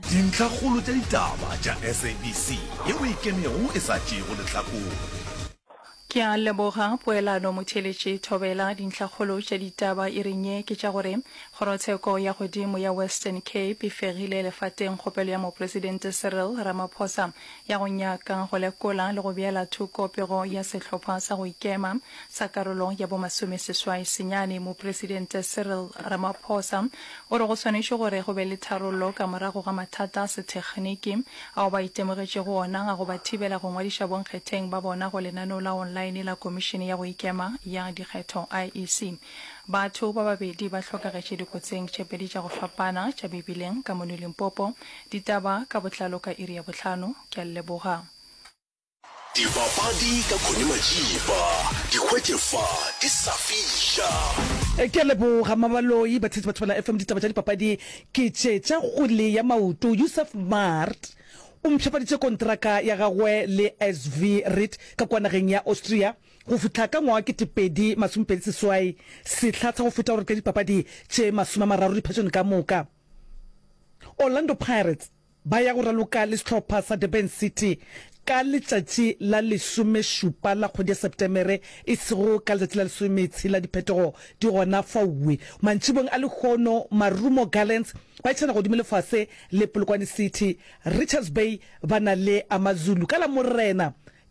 Dintlhakgolo tša ditaba tša SABC ye o e kenego e sa tšeego lehlakore. Ke a leboga poelano motheeletši Thobela. Dintlhakgolo tša ditaba iring ye ke tša gore Kgorotsheko ya Godimo ya Western Cape e fegile lefateng kgopelo ya Mopresidente Cyril Ramaphosa ya go nyaka go lekola le go beela thoko pego ya sehlopha sa go ikema sa karolo ya bo masomeseswai senyane. Mopresidente Cyril Ramaphosa O re go swanetše gore go be le tharollo ka morago ga mathata a sethekgniki ao ba itemogetšego ona a go ba thibela go ngwadiša bonkgetheng ba bona go lenaneo la online la Komišene ya go Ikema ya Dikgetho, IEC. Batho ba babedi ba hlokagetše dikotsing tše pedi tša go fapana tša mebileng ka mono Limpopo. Ditaba ka botlalo ka iri ya bohlano. Ke a le leboga. Dibapadi ka Connie Majiba, di hwetše fa di sa fiša. Ke a leboga Mabaloi, batshetsi batho bana FM ditaba tša dipapadi ke tše tša kgwele ya maoto. Yusuf Maart o mpshapaditše kontraka ya gagwe le SV Ried ka kua nageng ya Austria go fihla ka ngwaga wa kete pedi masome pedi seswai, sehla tsa go feta gore ka dipapadi tše masome a mararo diphetšong ka moka. Orlando Pirates. Ba ya go raloka le sehlopha sa Durban City ka letšatši la lesomešupa la kgwedi ya Sepetemere, e sego ka letšatši la lesometshela. Diphetogo di gona faue. Mantšibong a lehono, Marumo Gallants ba etišana godimo le fase le Polokwane City. Richards Bay ba na le Amazulu ka Lamorena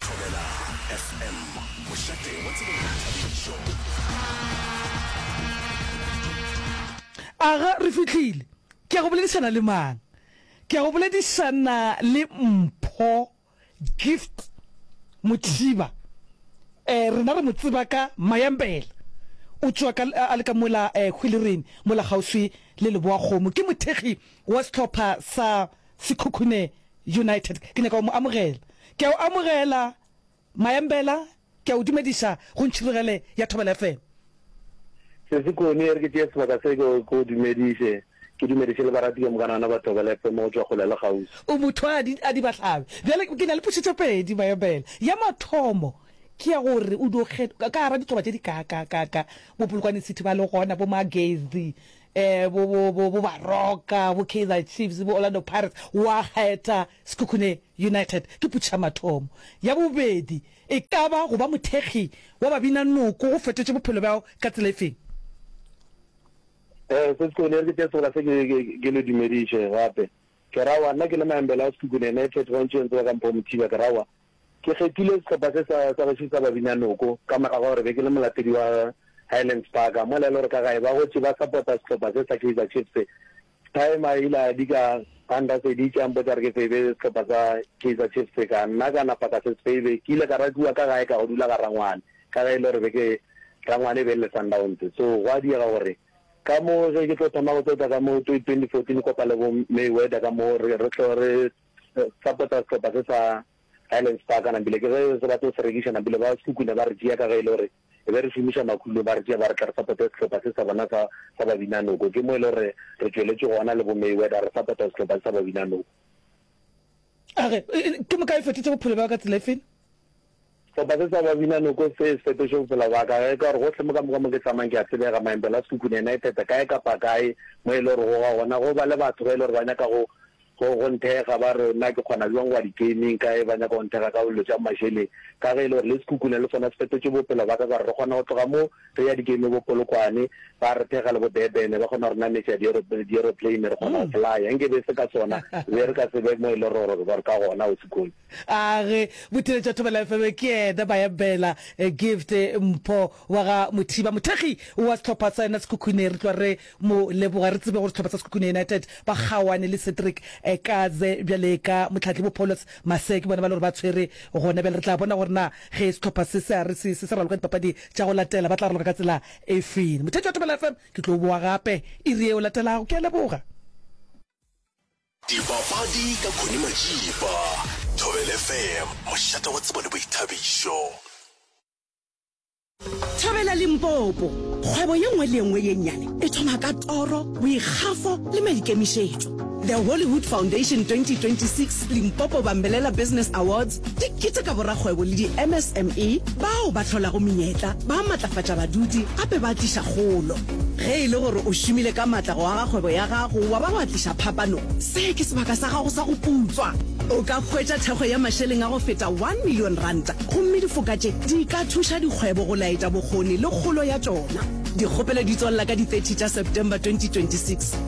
Thobela FM, mošate wa tsebo le boithabišo. Aga re fihlile. Ke a go boledišana le mang? Ke a go boledišana le Mpho Gift Mothiba. Eh rena re mo tseba ka Mayambela. O tšwa ka a le ka mola eh Hwilerene mola kgauswi le Leboakgomo. Ke mothekgi wa sehlopha sa Sekhukhune United. Ke nyaka go mo amogela. Ke a o amogela, Mayambela. Ke a o dumediša go ntšhirogele ya Thobela FM. Sesi Connie, e re ke tšee sebaka se ke o dumediše, ke dumediše le barati ka moka nana ba Thobela FM go tšwa kgole le kgauswi. O motho a di, a di ba hlabe. Bjale ke na le potšo tše pedi, Mayambela. Ya mathomo, ke ya gore o dio kgethwa ka gara ditloba tše di ka, ka, ka, ka bo Polokwane City ba le gona, bo Magezi, bo, bo, bo, bo Baroka, bo Kaizer Chiefs, bo Orlando Pirates, wa kgetha Sekhukhune United. Ke putšhamathomo ya bobedi. E ka ba go ba mothekgi wa Babinanoko go fetotše bophelo bja gago ka tsela efeng? Ee, se Sekhukhune, e re ke tšee sebola se ke, ke, ke le dumediše gape. Ke ra wa, nna ke le Maembela wa Sekhukhune United, gantši o ntse wa ka mpha o mothiba, ke ra wa. Ke kgethile sehlopha se sa sa gešo sa Babinyanoko ka morago ga gore be ke le molatedi wa Highlands Park. Mola e le gore ka gae ba gotše ba sapota sehlopha se sa Kaizer Chiefs, Stym a ile a dika a nraseditše a mpotša gore ke feibe sehlopha sa Kaizer Chiefs. Ka nna ka napa ka se se feibe. Ke ile ka ratiwa ka gae ka go dula ga rangwane ka ge e le gore be ke rangwane e be e le Sundowns. So gwa diega gore ka mo ge ke tlo thoma go tota ka mo 2014 kopa le bo Mayweather ka mo re re tlo re sa pota sehlopha se sa Highlands Park nabile ke ge se batla go se rekiša nabile ba Sekuku ne ba re tšea ka ge e le gore e be re šomiša makhulo ba re tšea ba re tla re sapote sehlopha se sa bona sa sa Babinanoko ke mo e le gore re tšweletše gona le bo Mayweather re sapota sehlopha se sa Babinanoko a re ke moka e fetotše bophelo bja ka tsela e feng Sehlopha se sa Babinanoko se fetoše bophelo bja ka ge e ka gore gohle mo ka moka mo ke tsamayang ke a tsebega, Maembelo a Sekhukhune United, kae kapa kae mo e le gore go ga gona go ba le batho ba e le gore ba nyaka go go go nthekga ba re na ke kgona bjang go ya di-gaming, kae ba nyaka go nthekga ka dilo tša mašeleng. Ka ge e le gore le Sekhukhune le sona se fetotše bophelo bja ka ka gore re kgona go tloga mo re ya di-game bo Polokwane, ba re thekga le bo Durban, ba kgona go re nametša di-aeroplane re kgona go flyer, nke be e se ka sona be re ka se be mo e le gore gore ka gona Ausi Kgonya. A re Boteletši wa Thobela FM ke yena Bayambela Gift Mpho wa ga Mothiba, mothekgi wa sehlopha sa yona Sekhukhune. Re tloga re mo leboga. Re tsebe gore sehlopha sa Sekhukhune United ba kgaoane le Cedric Kaze bjale ka mohlahli bo Paulus Mase ke bona ba le gore ba tshwere gona bjale. Re tla bona gore na ge sehlopha se se a re se sa raloka dipapadi tša go latela ba tla raloka ka tsela e feng. Motheetši wa Thobela FM, ke tlo o boa gape iri ye o latelago. Ke a leboga. Dipapadi ka Connie Majiba, Thobela FM, mošate wa tsebo le boithabišo. Thobela Limpopo, Kgwebo ye nngwe le ye nngwe ye nnyane e thoma ka toro, boikgafo le maikemišetšo. The Hollywood Foundation 2026 Limpopo Bambelela Business Awards Di keteka borakgwebo le di-MSME bao ba hlolago menyetla, ba matlafatša badudi gape ba tliša kgolo. Ge e le gore o šomile ka matla go aga kgwebo ya gago wa ba wa tliša phapano, se ke sebaka sa gago sa go putswa. O ka hwetša thekgo ya mašeleng a go feta one million ranta gomme difoka tše di ka thuša dikgwebo go laetša bokgoni le kgolo ya tšona. Dikgopelo di tswalela ka di 30 tša September 2026.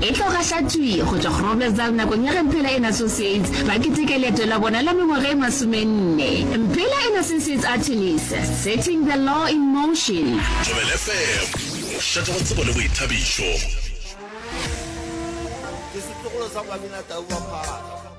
E tlo gahlatšwi go tšwa Groblersdal nakong ya ge Mphela and Associates ba keteka leeto la bona la mengwaga e masomenne. Mphela and Associates Artilis, Setting the Law in Motion. Thobela FM, go šetša go tsebo le boithabišo. Ke setlogolo sa Moabinatau wa Phara.